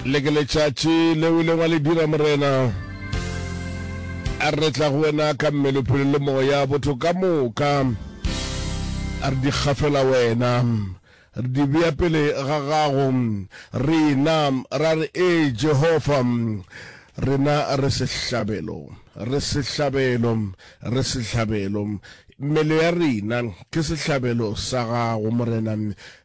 le ke letšatši le o ileng wa le dira morena a re tla go wena ka mmele phelo le moya botho ka moka a re di kgafela wena re di bea pele ga gago rena ra re e jehova rena re sehlabelo re sehlabelo re sehlabelo Mmele ya rena ke sehlabelo sa Gago, Morena.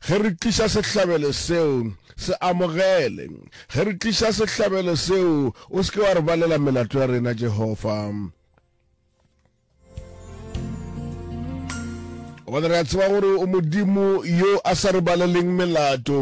Ge re tliša sehlabelo seo, se amogele. Ge re tliša sehlabelo seo, o se ke wa re balela melato ya rena, Jehofa. gobane re a tseba gore o modimo yo a sa re baleleng melato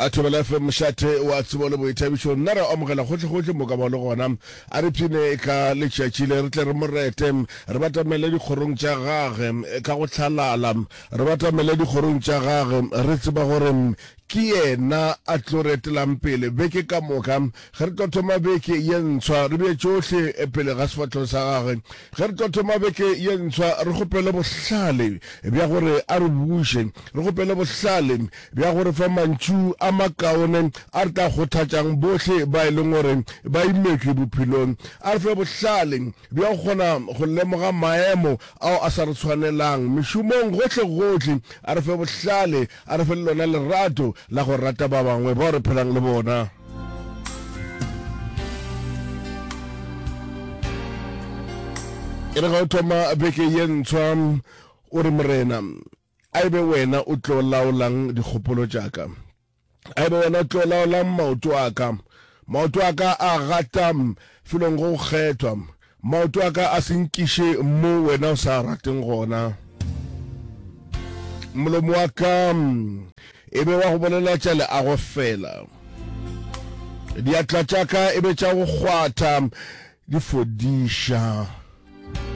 a thobela fe mošate wa tsebo le boithabišo nna re amogela gotlhegotlhe mo ka ba le gona a re phine ka letšatši le re tle re mo rete re batamele dikgorong tša gage ka go tlhalala re batamele dikgorong tša gage re tseba gore Ke Yena a tlo re etelang pele beke ka moka ge re tlo thoma beke ye ntshwa. Re bee tšohle pele ga sefahlego sa Gagwe ge re tlo thoma beke ye ntshwa. Re kgopele bohlale bja gore a re buše. Re kgopele bohlale bja go re fa mantšu a makaone a re tla kgothatšang bohle ba e leng gore ba imetšwe bophelong. A re fe bohlale bja go kgona go lemoga maemo ao a sa re tshwanelang mešomong gohlegohle. A re fe bohlale A re fe le lona lerato la go rata ba bangwe bao re phelang le bona. E re ga o thoma beke ye ntshwa, o re, Morena, a e be wena o tlo laolang dikgopolo tša ka. A e be wena o tlo laolang maoto a ka. Maoto a ka a gata felong go kgethwa. Maoto a ka a se nkiše mo wena o sa rateng gona. Molomo wa ka e be wa go bolela tša leago fela. Diatla tša ka e be tša go kgwatha di fodiša.